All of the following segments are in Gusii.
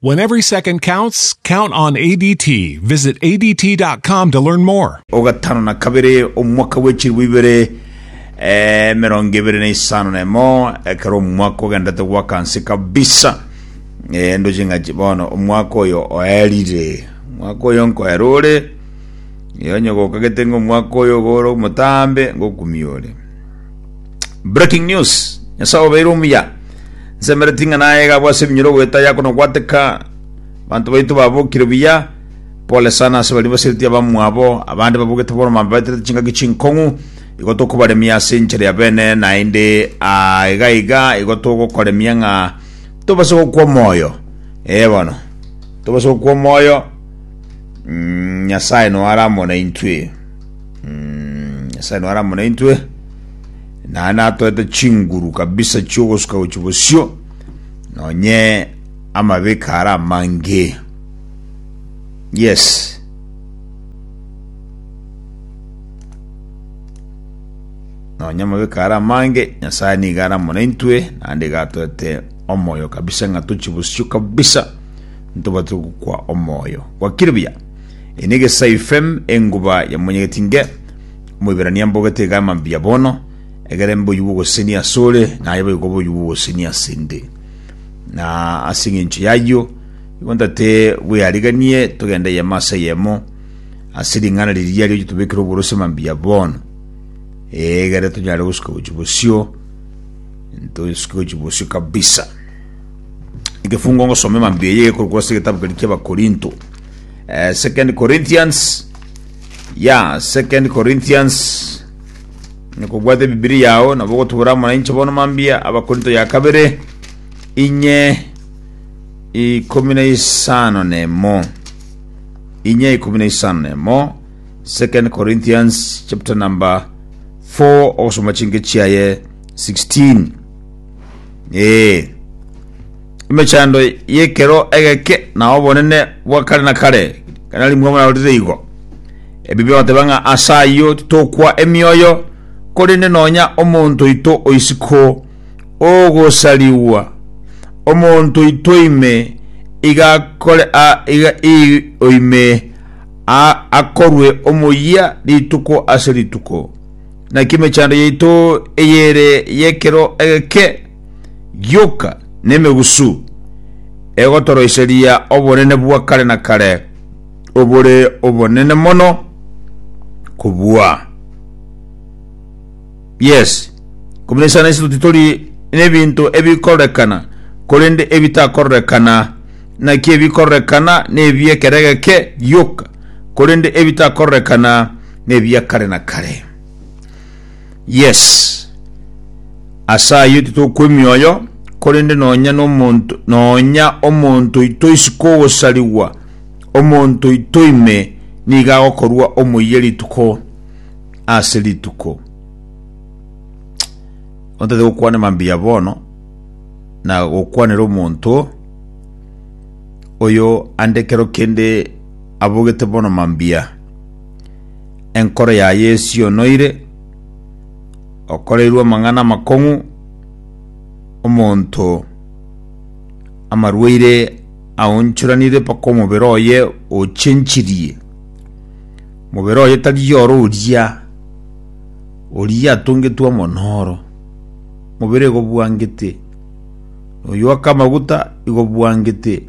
When every second counts, count on ADT. Visit ADT.com to learn more. o gatano na kabere omwaka bwe chiribu ibere eh, merongo ebere na isano na emo ekero omwaka ogendete gwaka nse kabisa eh, ndo chingachi bono omwaka oyo oerire omwaka oyo nkoera ore iyo onye gokagete ng'omwaka oyo gore omotambe ngokumia ore Breaking news. Nyasae obeire omuya. Nsemereti ng'a naye gabo ase ebinyoro goeta yako na gwateka. Banto baito babokire buya. Pole sana ase baria basereti abamwabo. Abande babogete bono mambaeterete chingaki chinkong'u. Igo tokobaremia ase enchera ya bene naende ah, iga iga igo togokoremia ng'a tobase gokwa omoyo. Eh bono. Tobase gokwa omoyo. Mm, Nyasae noe aramona intwe. Mm, nyasaye nore amo naintwe naye natoete chinguru kabisa chiogosuka gochi bosio nonye amabeka ara amange yes nonye amabeka ara amange nyasaye niga ara amo naintwe naende gatoete omoyo kabisa ng'a tochi bosio kabisa ntobatire gokwa omoyo gwakire buya Eye negesaife enguba ya monyegeti nge, Omoiberania mbogete iga mambia bono, egere mboyio bw'ogosenia asore, naye boigo boyio bw'ogosenia asende. Na ase eng'encho yayio, igo ntate bweariganie togende eyemo ase eyemo ase ring'ana riria rioche tobekere oboroso mambia bono, egere tonyare gosuka gochia bosio, tosuke gochia bosio kabisa. Ekefungo ngosome mambia eye ekorokwa ase egetabu keria ki'Abakorinto. eh, second corinthians ya second corinthians nikobwate bibiri yao nabo gotubura muna inche bono mambia abakorinto ya kabere inye ikumi na isano nemo inye ikumi na isano nemo second corinthians chapter number 4 ogosoma chinke chiaye 16 Ee, emechando y'ekero egeke na obonene bwa kare na kare, ekero narimwe mwarorire igo. Ebibe bateba ng'a ase ayio titokwa emioyo, korende nonya omonto oito oisiko ogosarigwa, omonto oito ime iga akore a- iga i- oime a- akorwe omoyia rituko ase rituko. Naki emechando yaito eyere y'ekero egeke gioka nemegusu egotoroiseria obonene bwa kare na kare obore obonene mono kobua. Yes, komina sana ase totitori n'ebinto ebikororekana, korende ebitakororekana. Naki ebikororekana nebi ekero egeke gioka, korende ebitakororekana Nebia kare na kare. Yes. Ase ayio titokwa emioyo, korende nonya nomonto, nonya omonto oito isiko ogosarigwa, omonto oito ime nigo agokorwa omoyia rituko ase rituko. Ontete gokwana mambia bono, na gokwanera omonto oyo ande kero kende abogete bono mambia. Enkoro yaye esionoire, okoreirwe amang'ana amakong'u, omonto amarwaire aonchoranire mpaka omobere oye ochenchirie. Omobere oye tari ore oria, oria atongetwe amo noro, mobere igo obwangete. Oyoaka amaguta igo obwangete.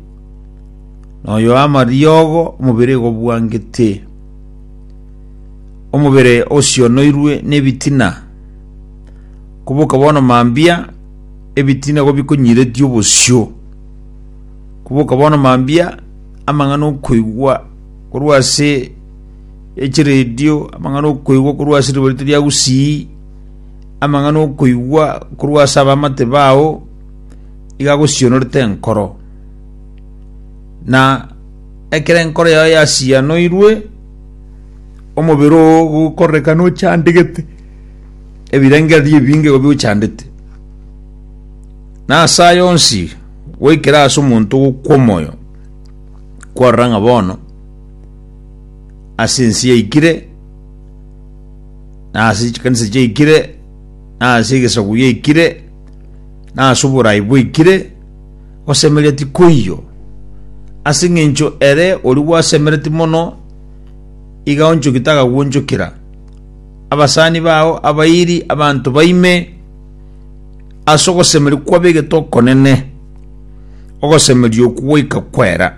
noyo amariogo omobere gobwangete omobere osionoirwe nebitina koboka bono mambia ebitina gobikonyiretie obosio koboka bono mambia amang'ana okoigwa korwa ase echiredio amang'ana okoigwa korwa ase ribarito ria gusii amang'ana okoigwa korwa ase abamate bao iga agosionorete enkoro na ekero enkoro yao yasianoirwe omobere oo gokorekana ochandegete ebirengererio ebinge igo biochandete na ase aya onsi goikera ase omonto ogokwa omoyo kwarora ng'a bono ase ense yaikire na ase chikanisa chiaikire na ase egesaku giaikire na ase oborai bwaikire gosemereria tikoiyo, ase engencho ere oria gwasemeretie mono iga onchoki tagagwonchokera. Abasani bao abairi abanto baime ase ogosemeria kwabegete okonene, ogosemeria okwo goika kwera.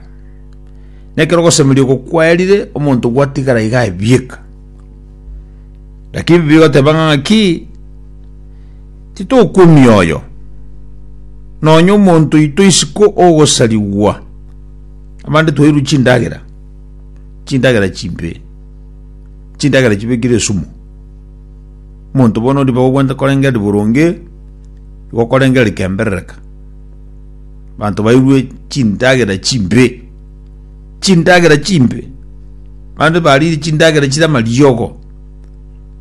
Nekero ogosemeria oko kwerire, omonto gwatigara iga abieka. Lakini Biblia egoteba ng'a ng'aki? Titokwomia oyo, nonya omonto oito isiko ogosarigwa. Abande twairwe chindagera, chindagera chimbe, chindagera chibekire esumu. Omonto bono ori bagobwente korengeri boronge, igo korengeri kemberereka. Abanto bairwe chindagera chimbe, chindagera chimbe, abande barire chindagera chire amariogo.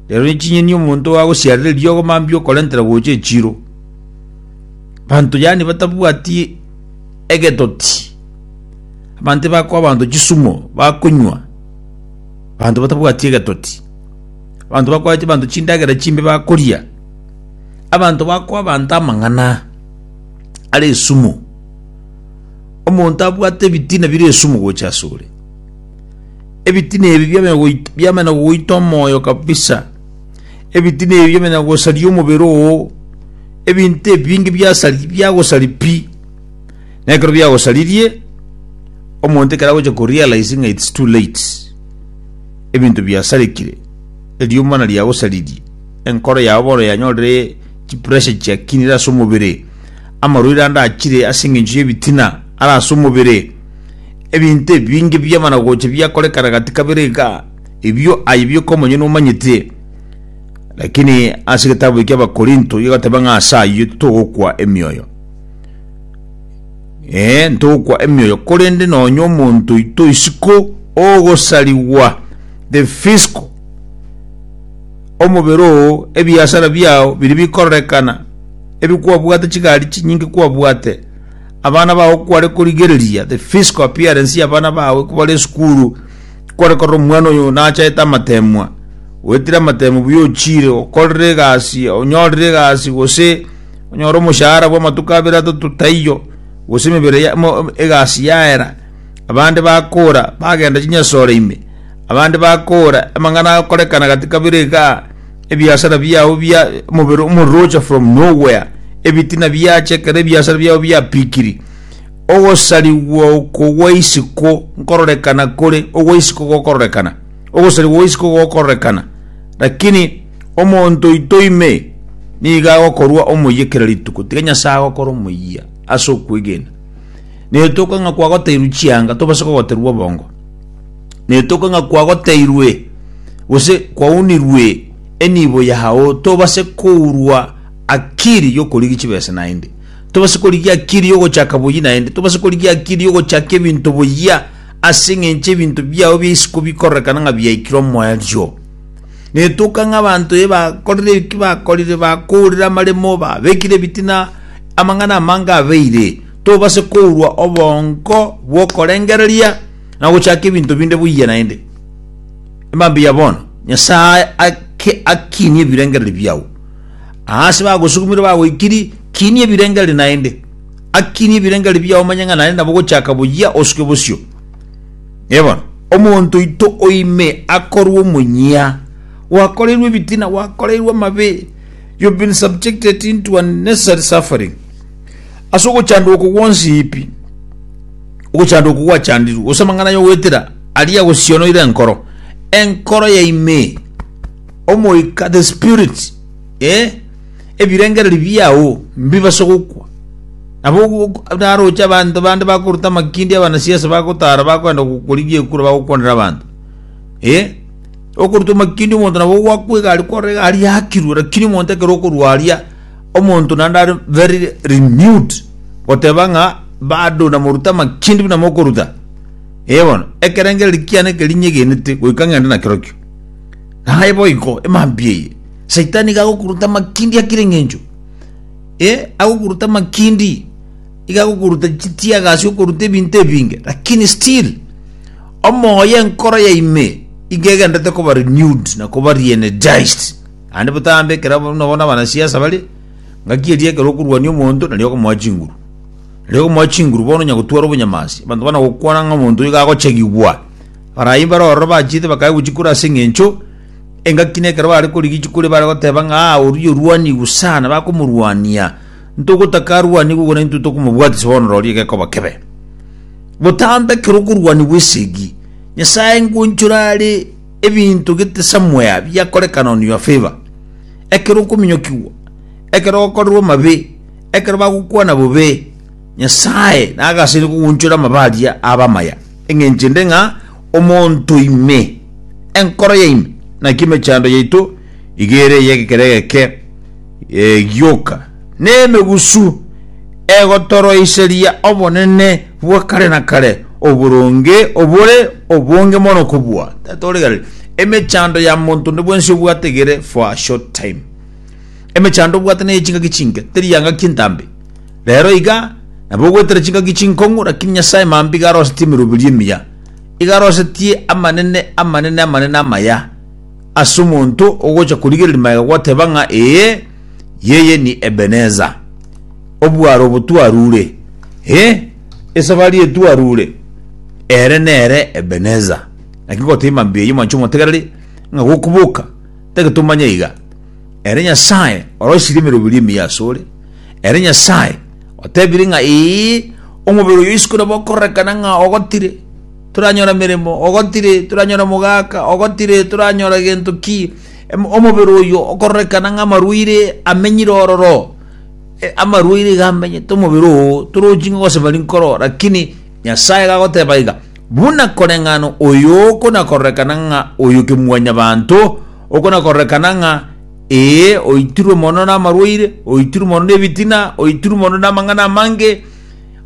Rero ne chinyeni omonto agosiarereria ogo mambia okorentera gocha echiro. Banto yani batabwati egetoti. Abanto bakoa abanto chisumo bakonywa. Banto batabwati egetoti. Banto bakoa abanto chindagera chimbe bakoria. Abanto bakoa abanto amang'ana are esumu. Omonto abwate ebitina bire esumu gocha asore. Ebitina ebi biamanya goita- biamanya goita omoyo kabisa ebitina ebi biamanya gosaria omobere oo ebinto ebinge biasari biagosari pi na ekero biagosaririe omonto ekero agocha korealize ng'a its too late ebinto biasarekire eriomba na riagosaririe enkoro yao bono yanyorire chipressure chiakinire ase omobere amarwaire ande achire ase eng'encho y'ebitina ara ase omobere Ebinto ebinge bi'amanagocha biakorekana gati kabere iga, ebio aye bioka omonyene omanyete. Lakini ase egetabu eki Abakorinto igoteba ng'a ase ayio titogokwa emioyo. Ee, ntogokwa emioyo, korende nonya omonto oito isiko ogosarigwa, the physical, omobere oo, ebiasara biao biri bikororekana, ebi kwabwate, chigari chinyinge kwabwate, Abana bao kware korigereria, the physical appearance ya abana bawe kobare esukuru, kware korora omwana oyo nachaete amateemwa, oetire amateemwa buya ochiire, okorire egasi, onyorire egasi, gose onyore omoshahara bwa amatuko abere atato taiyo, gose emebere ya- mo- egasi yaera, abande bakora, bagenda chinyasore ime, abande bakora, amang'ana akorekana gati kabere igaa, ebiasara biao bia omobere omorocha from nowhere ebitina biache ekero ebiasara biao biapikiri ogosarigwa oko gwa isiko nkororekana kore ogwa isiko gokororekana ogosarigwa gwa isiko gokororekana lakini omonto oito ime niga agokorwa omoyia kera rituko tiga nyasaye agokora omoyia ase okwegena netoka ng'a kwagoteirwe chianga tobase kogoterwa obongo netoke ng'a kwagoteirwe gose kwaunirwe enibo yao, tobase kourwa akiri y'okorigia chibesa naende, tobase korigia akiri y'ogochaka boyia naende, tobase korigia akiri y'ogochaka ebinto boyia, ase eng'encho ebinto biao bia isiko bikororekana ng'a biaikire omoerio. Netoka ng'a abanto eba korire eki bakorire, bakourire amaremo, babekire ebitina, amang'ana amange abeire, tobase kourwa obongo bw'okorengereria, na gochaka ebinto binde buya naende. Emambia ya bono, Nyasae ake akinie ebirengereri biao. Aase bagosukumire bagoikiri, kinia ebirengereri naende. Akinie ebirengereri biao omanye ng'a nare nabo gochaka buya osuke bosio. Ebono, omonto oito oime akorwa omonyia, gwakoreirwe ebitina, gwakoreirwe amabe, you've been subjected into unnecessary suffering. Ase ogochandwa oko gwonsi pi, ogochandwa oko gwachandirwe, gose amang'ana y'ogoetera aria agosionoire enkoro, enkoro ya ime, omoika, the spirit, eh, ebirengererio biao mbibase gokwa. Nabo ogo- naroche abanto bande bakoruta amakindi abanasiasa bagotara bakoenda gokorigia ekura bagokwanera abanto. Eh, okoruta amakindi omonto nabo ogwakwa egari kwarora egari yakirwe, lakini omonto ekero okorwa aria Omonto naende are very renewed goteba ng'a bado namoruta amakindi buna mokoruta ee bono ekerengereri kiane eke rinyegenete goika ng'ende nakerokio naye boiko emambia eye saitani iga agokuruta amakindi akire eng'encho ee agokuruta amakindi iga agokuruta chitiaga ase okoruta ebinto ebinge lakini still omoyo enkoro ya ime iga egendete koba renewed na koba reenergized Naende botambe ekero bono bono abanasiasa bare, ngaki eria ekero okorwania omonto nari okomoa chinguru. Nari okomoa chinguru bono onya gotwara obonyamansi, abanto bana gokwana ng'a omonto iga agochegigwa. Barai mbare ororo bachiete bakae gochia kore ase eng'encho engaki na ekero bare korigia chikori bare goteba ng'a aa oria orwanigwe sana bakomorwania, ntogotaka arwanigwe igoro naintwe tokomobwatisa bono roria gekoba kebe. Botambe ekero okorwanigwa esegi, Nyasae ngonchore are Ebinto gete somewhere biakorekana on your favour, ekero okominyokigwa, ekero ogokorerwa amabe, ekero bagokwana bobe, Nyasae nagasaini kogonchora amabe aria abe amaya, engencho ende ng'a omonto ime, enkoro yaino, naki emechando yaito igo ere ey'egekero egeke, egioka, nemegusu egotoroiseria obonene bwa kare na kare, oboronge obore obonge mono kobua. Emechando ya monto onde bwensi obwate egere for a short time. Emechando obwate neye chingaki chinke, teri yangaki entambe. Rero iga, nabo ogwetera chingaki chinkong'u, lakini Nyasaye mambia iga arosetie emeroberio emiya. Iga arosetie amanene, amanene, amanene amaya. Ase omonto ogocha korigereria magega goteba ng'a ee, yeye ni Ebeneza, obwaro obo twarure, ee, esafari eye twarure, ere nere Ebeneza. Naki goteima mbuya y'omwancha omotegereri, ng'a gokuboka, tagete omanye iga. Ere Nyasae orosirie emeroberio emiya asore, ere Nyasae otebire ng'a ee, omobere oyo isiko nabo okorerekana ng'a ogotire. Toranyora emeremo, ogotire, toranyora omogaka, ogotire, toranyora gento ki, em- omobere oyo okororekana ng'a amarwaire amenyire ororo, e- amarwaire iga amenyete omobere oo, torochi ng'a gose bari nkoro, lakini Nyasaye gagoteba iga, buna koreng'ana oyo okonakororekana ng'a oyo kemwanyabanto, okonakororekana ng'a ee, oitirwe mono namarwaire, oitirwe mono nebitina, oitirwe mono namang'ana amange,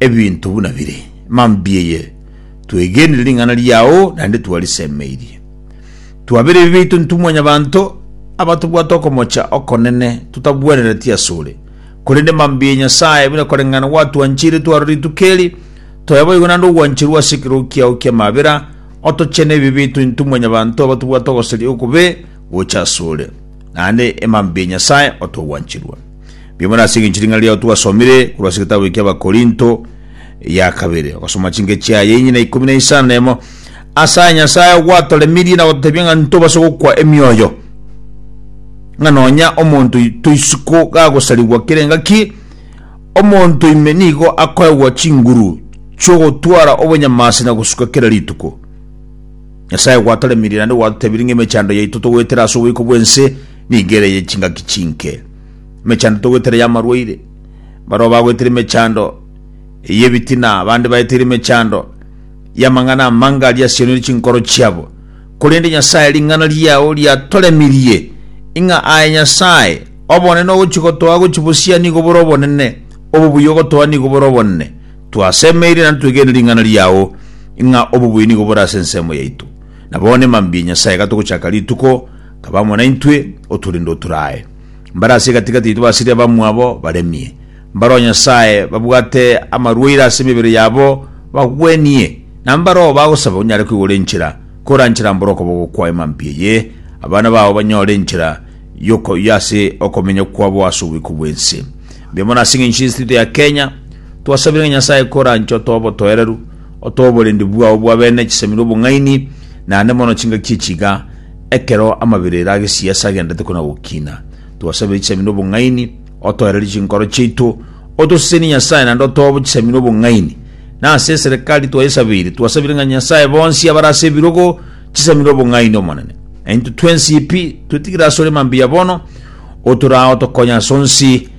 Ebinto buna bire, mambia eye, twegenire ring'ana riao naende twarisemeirie. Twabera ebibe biaito intwe mwanyabanto, abatobwate okomocha okonene totabwenereti asore. Korende mambia eye Nyasae, buna koreng'ana gwatwancheire twaro rituko eri, toye boigo naende ogwancherwa ase ekerogo kiao ki'amabera, otochene ebibe biaito intwe mwanyabanto abatobwate ogosaria okobe gocha asore. Naende e mambia eye Nyasae, otogwancherwa. Biamono nase engencho ring'ana riao twasomire korwa ase egetabu ekia Abakorinto ya kabere. Ogasoma chinke chiaye inye na ikomi na isano na emo. Ase aya Nyasae ogwatoremirie na gototebia ng'a ntobase gokwa emioyo, ng'a nonya omonto oito isiko gagosarigwa kera engaki, omonto ime nigo akoegwa chinguru chi'ogotwara obonyamasi na gosuka kera rituko. Nyasae gwatoremirie naende gwatotebirie ng'a emechando yaito togoetera ase oboiko bw'ense Migere ye chingaki chinke. Emechando togwetera y'amarwaire. Barabwo bagwetire emechando y'ebitina, abande baeteire emechando y'amang'ana amange aria asianire chinkoro chiabo. Korende Nyasae, ring'ana riao riatoremirie ing'a aye Nyasae, obonene ogochia gotoa gochia bosio nigo bore obonene, obobuya ogotoa nigo bore obonene. Twasemeire naende twegenire ring'ana riao ing'a obobuya nigo bore ase ensemo yaito. Na bono emambia Nyasae, iga togochaka rituko, Taba amo naintwe, oturinde oturae. Mbare ase egati-gati yaito basirie abamwabo baremie. Mbareo Nyasae babwate amarwaire ase emebere yabo bagwenie, na mbareo bagosaba onyare koigora enchera koranchera mbore okoboko kwao emampi eye, abana bao banyore enchera yoko y'ase okomenya kwabo ase oboiko bw'ense. Mbuya mono ase eng'encho y'ense taito ya Kenya. Twasabire ng'a Nyasae koranche otoe obotoereru, otoe oborendi bwao bw'abene chisamire obong'aini, naende mono chingaki echi iga, Ekero amabera aire agesiasi agendete kona gokina, twasabire chisemi nobong'aini, otoererie chinkoro chiaito, otosesenie Nyasae naende otobo chisemi nobong'aini. Na ase eserekari twayesabeire, twasabire ng'a Nyasae bonsi abare ase ebirogo chisemi nobong'aini Omonene. Na intwe twensi pi twetigire asore mambia bono, otorao tokonye as'onsi,